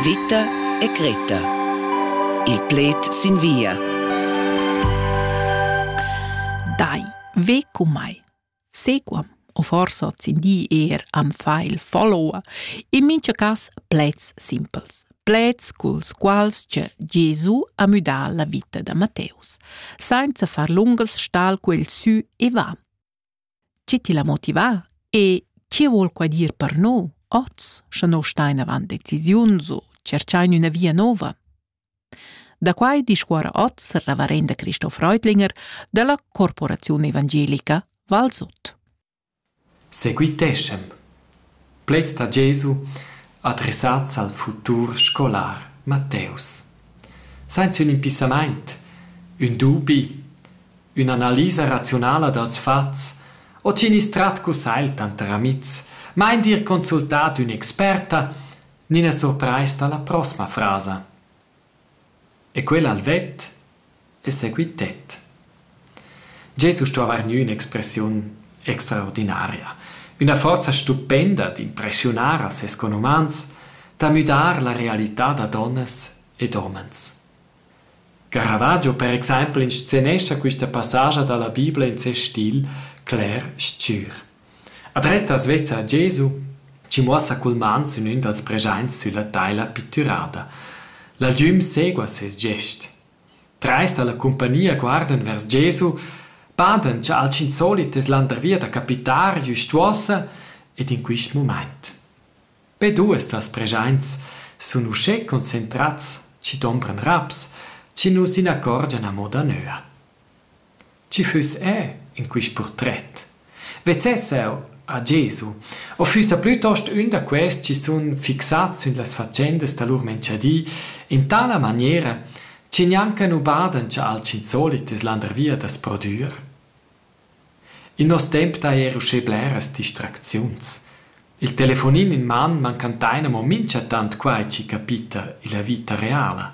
Vita e Greta. Il pled sin via. Dai, ve cu mai. Sequam, o forsa sin di er am fa il follower, in mincha cas pleds simpels. Pleds culs quals che Gesù ha müdà la vita da Matteus, senza far lungas stal quel sü e va. Chi ti l'ha motivà e chi vuol qua dir per noi oz, scha no stain avant decisiuns u tscherchain üna via nouva? Da quai discuorra oz il reverenda Christoph Reutlinger da la Corporaziun Evangelica Valsot. Seguiteschem! Plaids da Jesu adressats al futur scolar Matteus. Sainz ün impissamaint, ün dubi, ün'analisa raziunala dals fats o chi gnüss trat cussagl tanter amihs, ma eir d'ir consultà d'ün'experta, gnina surprais da la prossma frasa. E quel al vet e seguit tet. Jesus sto avair gnü ün'expressiun extraordinaria, üna forza stupenda d'impreschiunar a ses conumans, da müdar la realità da donnas ed homens. Caravaggio per exaimpel inscenescha quista passage da la Bibla in ses stil cler s-chür. A drettas vezza Gesu chi muossa cul man sün ün dals preschaints sülla teila pittürada. L'algüm segua seis gest. Trais da la cumpagnia guardan vers Gesu, padan cha al tschinsolit es landervia da capitar güst uossa ed in quist mumaint. Be duos dals preschaints sun uschè concentrats chi dombran raps chi nu s'inaccorgian amo danöa. Tgi füss eu in quist purtret? Vezzess eu a Gesu u füssa plütost ün da quels chi sun fixats sün las fatschendas da lur menchadi in tala maniera chi gnanca nu badan cha alchün solit es landervia da's prodüer? In nos temp d'haja eir uschè bleras distracziuns. Il telefonin in man mancan tain amo minchatant quai chi capita illa vita reala.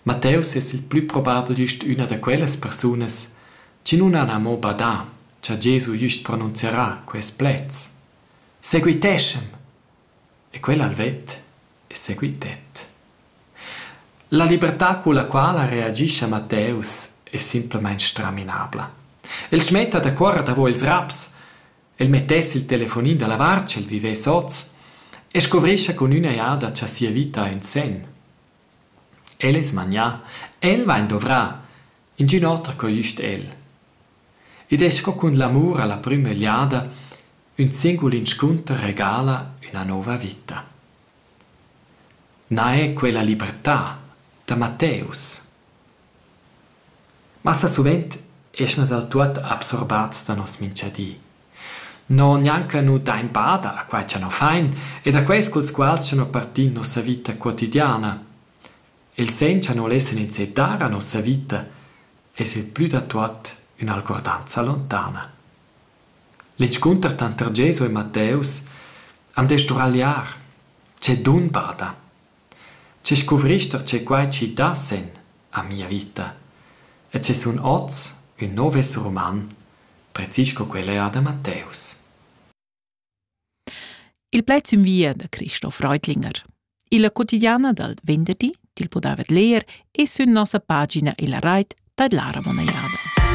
Matteus es il plü probabel güst üna da quellas persunas chi nun han amo badà cha Gesu güst pronunzierà quests pleds: «Seguiteschem!» E quel ha'l vet e seguitet. La libertà culla quala reagischa Matteus es simplamaing straminabla. El smetta da cuorrer davo ils raps, el mettess il telefonin da lavar sch'el vivess hoz e scuvrischa cun üna jada cha sia vita ha ün sen. El es magnà, el vain dovrà, ingün oter co güst el. Id es sco cun l'amur a la prüma egliada, ün singul inscunter regala üna nouva vita. Na è quella libertà da Matteus. Massa suvent eschna dal tuot absorbats da nos minchadi. No gnanca nu dain bada a quai cha no fain ed a quels culs quals cha no partin nossa vita quotidiana. Il sen cha no lessan insè dar a nossa vita es il plü da tuot ün'algordanza lontana. L'inscunter tanter Gesu e Matteus am dess sduragliar. Che dun bada! Che scuvrist da tge quai chi dassan a mia vita e che sun oz ün nouv esser uman, precis sco quel eir da Matteus. Il pled sün via da Christoph Reutlinger. Illa quotidiana dal venderdi til pudavet leer e sün nossa pagina illa rait tadlara Lavon Ajada.